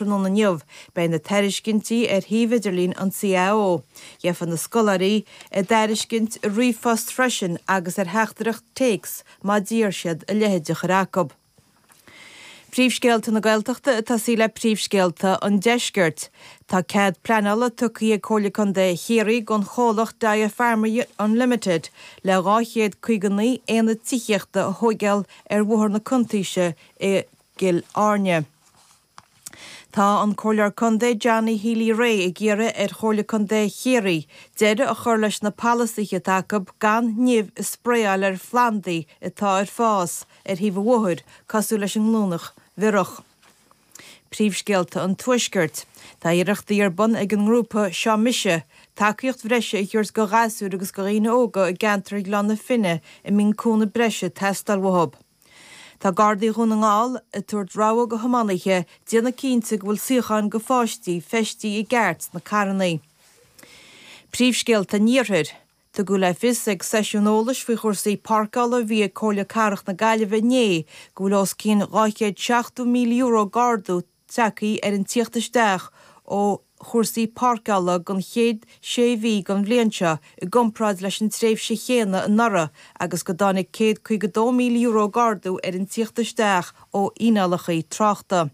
tráthnóna inniu, beidh na tairiscintí ar shuíomh idirlín an CAO. Gheobhaidh na scoláirí a dtairiscint i ríomhphost freisin agus ar theachtaireacht téacs má d'iarr siad a leithéid a chur chucu. Príomhscéalta na Gaeltachta a tosaí le Príomhscéalta an Deiscirt. Tá cead pleanála tugtha ag Comhairle Contae Chiarraí don chomhlacht Dyer Farmery Unlimited le 259 aonad tithíochta a thóigeáil ar Bhóthar na Cuntaoise i gCill Airne. Tá an Comhairleoir Contae Johnny Healy Rae ag iarraidh ar Chomhairle Contae Chiarraí deireadh a chur leis na polasaithe atá acu gan nimh a spraeáil ar phlandaí atá ar fás ar thaobh an bhóthair, cosúil leis an nGlúineach Bhiorach. Príomhscéalta an Tuaiscirt. Tá iarrachtaí ar bun ag an ngrúpa Seo Mise tacaíocht breise a thabhairt go ghasúir agus go dhaoine óga i gceantar Ghleann na Finne a mbíonn cúnamh breise ag teastáil uathu. Tá Gardaí Dhún na nGall ag tabhairt rabhadh go thiománaithe, déanamh cinnte go bhfuil suíocháin do pháistí feistithe i gceart sna carrannaí. Príomhscéalta an Iarthair. Tugadh le fios ag seisiún eolais faoi chúrsaí páirceála a bhí ag Comhairle Cathrach na Gaillimhe inné go bhfuil os cionn €270,000 d'ardú a tagthaí ar an tíocht isteach ó chúrsaí páirceála don chéad sé mhí den bhliain seo i gcomparáid leis an tréimhse chéanna anuraidh agus go dtáinig €152,000 d'ardú ar an tíocht isteach ó fhíneálachaí tráchta.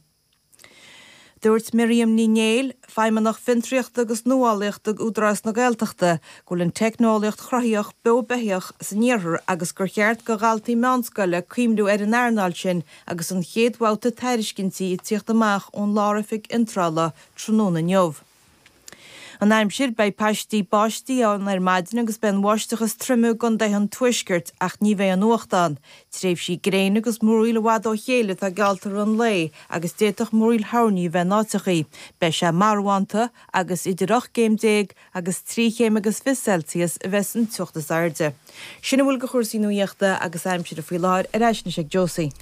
Dúirt Miriam Ní Néill, Feidhmeannach Fiontraíochta agus Nuálaíochta Údarás na Gaeltachta, go bhfuil an teicneolaíocht chruthaitheach beo beithíoch san iarthar agus gur cheart do dhaltaí meánscoile cuimhniú ar an earnáil sin Agus an chéad bhabhta tairiscintí ag tíocht amach ón Lár-Oifig Iontrála tráthnóna inniu. An aimsir, Beidh paistí báistí ann ar maidin agus beidh an bháisteach is troime i gContaetha an Tuaiscirt ach ní bheidh aon fhuacht ann. Tréimhsí gréine agus múraíl i bhfad ó chéile atá geallta i rith an lae agus d'fhéadfadh múraíl thoirní a bheith in áiteachaí. Beidh sé marbhánta agus idir 8 gcéim déag agus trí chéim agus fiche Celsius a bheas san teocht is airde. Sin a bhfuil de chúrsaí nuaíochta agus aimsire faoi láthair ar ais anois ag Josie.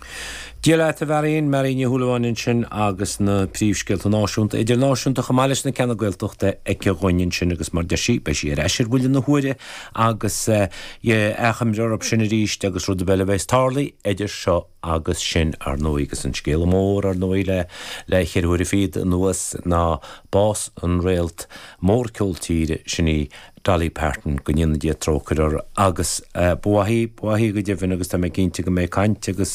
Dia leat, a Mháirín, Máirín Ní Shúilleabháin ansin agus na príomhscéalta náisiúnta, idirnáisiúnta chomh maith leis na ceanna Gaeltachta aici dhúinn ansin agus mar deir sí, beidh sí ar ais ar bhuille na huaire agus achoimre orthu sin arís agus rud ar bith eile a bheas tarlaithe idir seo agus sin, ar ndóigh, agus an scéal mór, ar ndóigh, le, le cheithre huaire fichead anuas, ná bás an réalt mhór ceol tíre sin í Dolly Parton, go ndéana Dia trócaire uirthi, agus ba mhaith í, ba mhaith í go deimhin, agus tá mé cinnte go mbeidh caint agus,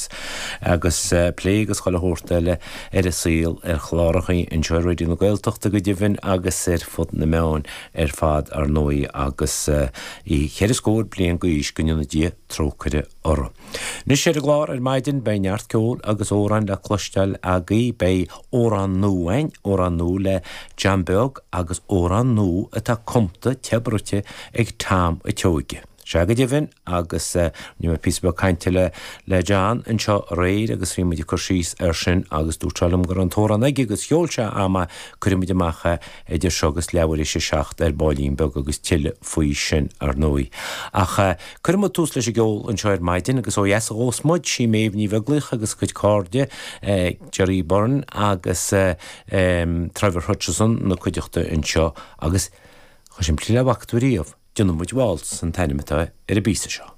agus plé agus chuile shórt eile ar a saol ar chlárachaí anseo ar Raidió na Gaeltachta go deimhin agus ar fud na meáin ar fad, ar ndóigh, agus í cheithre scór bliain d'aois, go ndéana Dia trócaire uirthi. Anois ar an gclár ar maidin beidh neart ceoil agus amhráin le cloisteáil agaí, beidh amhrán nua a'inn, amhrán nua le John Beag agus amhrán nua atá cumta te bruite ag Tom a' tSeoige. Sea go deimhin agus rinne mé píosa beag cainte le le John anseo aréir agus bhí muid ag cur síos ar sin agus dúirt sé liom go raibh an t-amhrán aige agus sheol sé a'm é, cuirfidh muid amach é, Idir seo agus leathuair tar éis a seacht ar baillín beag agus tuilleadh faoi sin, ar ndóigh. Ach cuirfidh muid tús leis an gceol anseo ar maidin agus ó dheas a ghabhfas muid, sí Méabh Ní Bheaglaoich agus a cuid cairde, Gerry Byrne agus Trevor Hutchinson ina cuideachta anseo agus, chomh simplí le bhfaca tú riamh, déanfaidh muid Waltz an t-ainm atá ar an bpíosa seo.